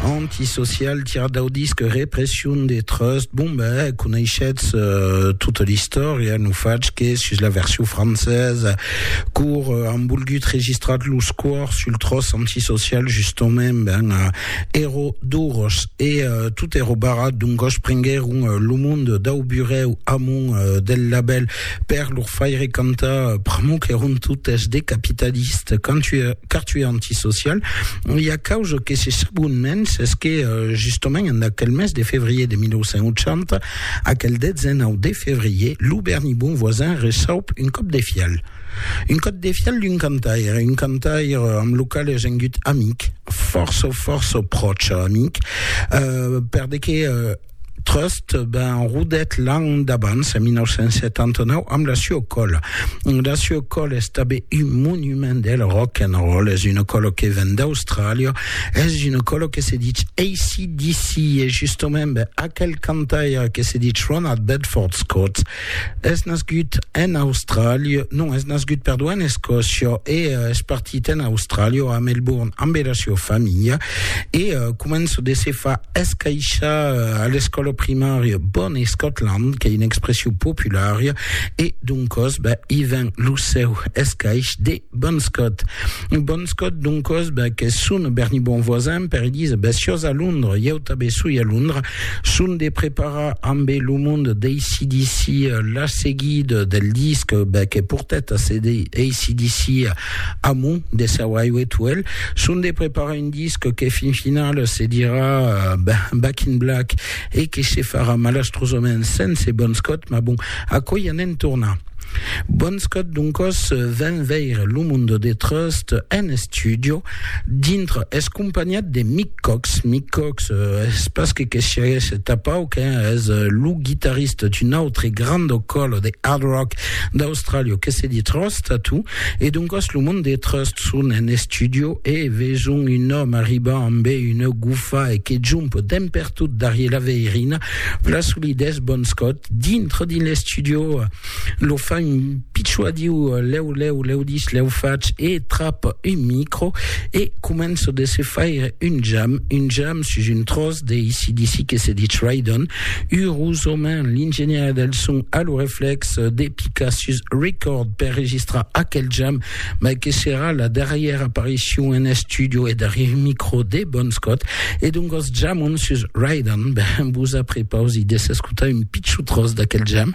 Antisocial, tirad dau disc Repression de Trust. Bon, ben, coneishetz euh, tota l'istòria, no fatz que sus la version francesa, cor euh, an volgut registrat los cors sul tros antisocial, justament, ben, euh, ero duros, e euh, tot ero barrat, doncos prenguèron euh, lo monde dau burèu amont euh, del labèl. Per lor faire cantar pr'amor qu'èron totes de capitalistes, car tu es antisocial, e a causa que se sabon mens, es que justament en aquel mes de fevrier de 1980, aquel 19 de fevrier, lo Berni Bon Voisin receup un còp de fial. Un còp de fial d'un cantaire, un cantaire amb lo qual es engut amic, fòrça, fòrça pròche amic, per de que Trust ben rodet l'an d'abans, en 1979, amb la Sue Call. La Sue Call es tabé un monument del rock and roll, es una colo que ven d'Austràlia, es una colo que se dit ACDC, e justament ben, aquel cantaire que se dit Ronald Bedford Scott, Es nascut en Austràlia, non, es nascut, perdó, en Escòcia e uh, es partit en Austràlia o a Melbourne amb era sua familha e uh, començo de se fa escaixar uh, a l'escòla primària Bon Scotland, qu'ei una expression populària e doncòs, ben, i ven lo seu escaix de Bon Scott. Bon Scott, doncos, bèc, es son berni bon voisin, per Elisa, bèth siós a Londres, ieu tabé soi a Londres, son de preparar ambé lo mond d'ACDC la seguida del disc, bèc, e portèt a CD ACDC amont de seu Highway to Hell, son de preparar un disc que fin final se dirà Back in Black e que se farà malastrosament sense Bon Scott, mas bon, aquò i anem tornar. Bonscot doncos ven veire lo Mundo de Trust en estudio dintre es companhat de Mick Cox. Mick Cox euh, es pas que que siaguesse tapau que es euh, lo guitarrista d'un autre grand colo de hard rock d'Australia que se dit Trust Tattoo e doncos lo Mundo de Trust son en estudio e veson un òme arribar amb una gufa e que jump demper Tot darrier la veirina, la solidés Bon Scott, dintre dins l'estudio, lo fa un pitjò a diu, lèu, lèu, lèu dis, lèu fach, e trap un micro e comença de se faire un jam, un jam sus un tròç de AC/DC que se dich Ride-On, urosament l'ingenièr del son a lo reflèx de picar sus Record per registrar aquel jam, mai que serà la darrièra aparicion en estudio e darrièr micro de Bon Scott, e doncas jamon sus Ride On, ben vos aprepausi de s'escotar un pichon tros d'aquel jam.